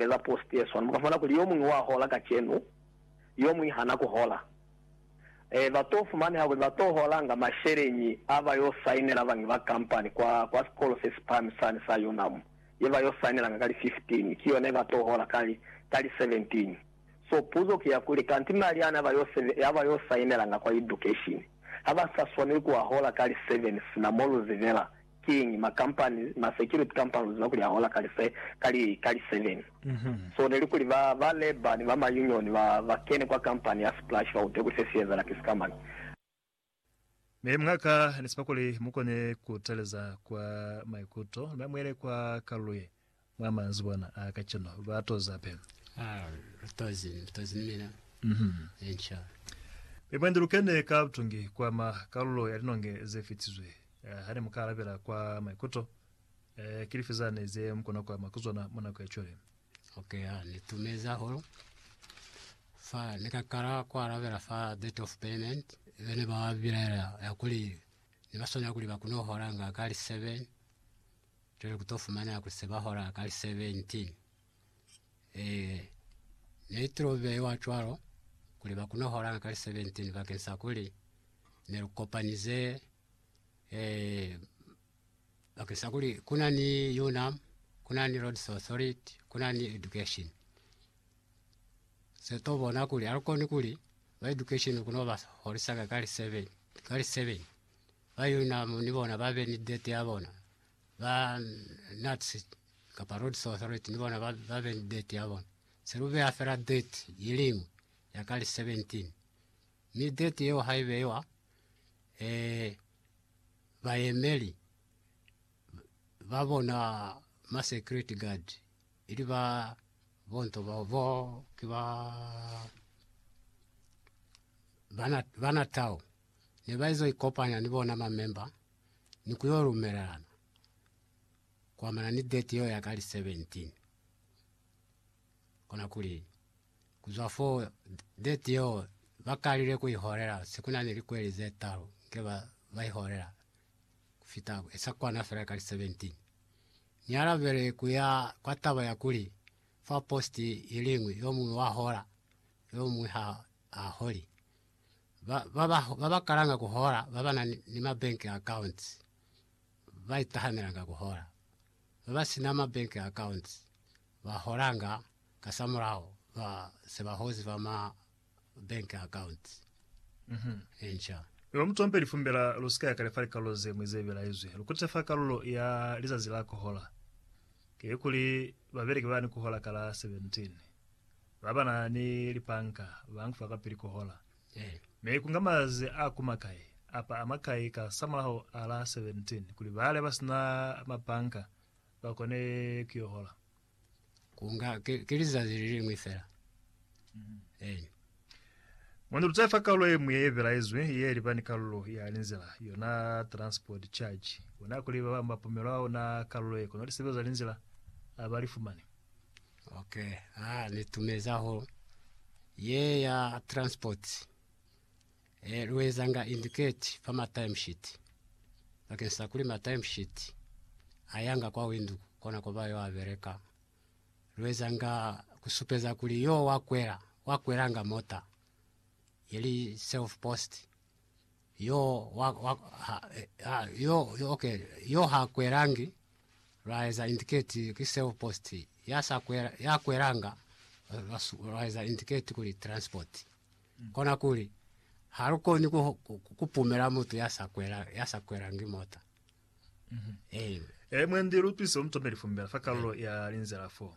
eza post yeswana muka fumana kuli yomuñwi wa hola kacenu yomuñwi hana kuhola. E, ba to fumaneha kuli ba to holanga masheleñi a ba yo sainela bañwi ba kampani kwa, kwa sikolo se si pahami sani sa Unam, ye ba yo sainelanga ka li 15, ki yona ye ba to hola ka li, ka li 17. So, puzo ki ya kuli, kanti mali ana a ba yo sebe, a ba yo sainelanga kwa education, ha ba sa swaneli ku a hola ka li 7 sina mo lu zibela Kiñi, ma company, ma security companies ba kuliha hola ka li, ka li, ka li seven. So neli kuli ba, ba labor ni ba ma union ba, ba kene kwa company ya Splash ba utwe kuli se si ezala ki sika mani. Mi mwa ka ni sepa kuli mu kone ku taleza kwa maikuto, mi ba muele kwa kalulo ye Mwa manzibwana a kacenu ba toza pe. Ah, tozi, tozi ni mina. Mhm. Enca. Mi mwendi lu kene ka butungi kwa ma kalulo ya linonge ze fitizwe. Eh, ha ne mu ka alabela kwa maikuto, eh, ki lifi zane ze mu kona kwa ma ku zona mwa nako ya cwale? Okay, ah, ni tumezi hahulu. Fa ni ka kala ku alabela fa date of payment, be ne ba bilaela ya kuli ne ba swanela kuli ba kune ku holanga ka li seven. Cwale ku to fumana ku seba hora ka li 17. Ee, ne i tilo beiwa cwalo, kuli ba kune holanga ka li 17 bakeng sa kuli ne lu kopanize, ee, bakeng sa kuli ku na ni UNAM, ku na ni Roads Authority, ku na ni Education. Se to bona kuli ha lu koni kuli ba Education ku no ba holisanga ka li 7, ka li 7 Bayuna ni bona ba be ni date ya bona, ba Nazi kapa Rhodes Authority ni bona ba be ni date ya bona. Se lu beha fela date ye liñwi ya ka li 17, mi date yeo ha i beiwa, eh, bayemeli ba bona ma security guard, ili ba bo nto bao, bo ki ba, ba Natal. ne ba izo ikopanya ni bona ma memba ni ku yo lumelelana ku amana ni date yeo ya ka li 17. Kona kuli, ku zwa fo date yeo ba kalile ku i holela se ku na ni likweli ze talu nge ba ba i holela ku fita sa kwana fela ka li 17. Ni alabele ku ya kwa taba ya kuli fa post i liñwi yo muñwi wa hola, yo muñwi ha a holi. ba ba ba, ba ba kalanga ku hola ba ba na ni, ni ma bank accounts ba itahamelanga ku hola, ba ba sina ma bank accounts ba holanga kasamulaho ba se ba hozi ba ma bank accounts. Mhm. Enca. Lu mutompe lifumbe la lu si ka ya kale fa likalulo ze ñwi ze belaezwi. Lu kutise fa kalulo ya lizazi la ku hola, ki kuli, babeleki ba ni ku hola ka la 17. Ba ba na ni lipanka ba nkufa kapili ku hola. Mi ku nga mazazi a ku makai, apa a makai ka samulaho a la 17, kuli bale ba si na mapanka ba kone ku yo hola. Ku nga ki lizazi le liñwi fela. Eeni. Mwa ni luta fa kalulo ye ñwi ye belaezwi ye li ba ni kalulo ya linzila, yona transport charge. Ku na kuli ba bañwi ba pumelwa ona kalulo ye, kono lisebeza linzila a ba li fumani. Ok ha ni tumeza ho ye ya transport eh, lu ezanga indicate fa ma time sheet bakeng sa kuli ma time sheet ayanga kwa windu kona ko ba yo a bereka lu ezanga kusupeza kuli yo wa kwela wa kwelanga mota yeli self post Yo wa, wa, ha, ha, yo, yo, okay. Yo ha kwelangi lwaeza indicate ki self post. Ya sa kwela, ya kwelanga lwaeza indicate kuli transport. Mm. Kona kuli ha lu koni ku, ku, ku pumela mutu ya sa kwela, ya sa kwelangi mota. Mm -hmm. Amen. E mwendi lutwiso mtombe lifumbela fa kalulo ya linzela fo.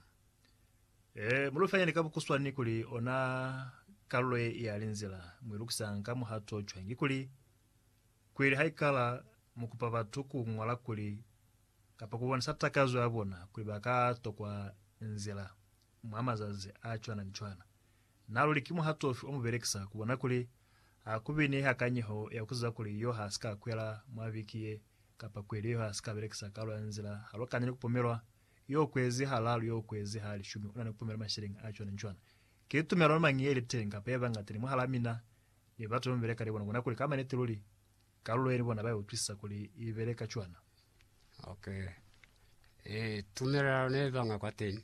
Ee, mu lufanyani ka bukuswani kuli ona kalulo ye i yali nzila mu ilukisanga ka muhato cwañi. Kikuli, kuili haikala mu kupa batu ku ñola kuli kapa ku bonisa takazo ya bona kuli ba ka tokwa nzila mwa mazazi a cwana ni cwana, na luli ki muhato ufi o mu belekisa ku bona kuli ha ku bi ni hakanyeho ya ku ziba kuli yo ha si ka kwela mwa viki ye kapa kuili yo ha si ka belekisa kalulo ya nzila halukani ni ku pomelwa Yo kwezi halalu, yo kwezi ha lishumi, una ni kupumela masheleñi a cwana ni cwana. Ki tumelano mañi yeli teñi kapa ye bangata ni mwahalaa mina ni batu bemubeleka ni bona ku bona kuli ka maniti luli kalulo ye ni bona ba utwisisa kuli i beleka cwana? Ok. Ee, tumelano ne banga kwateñi.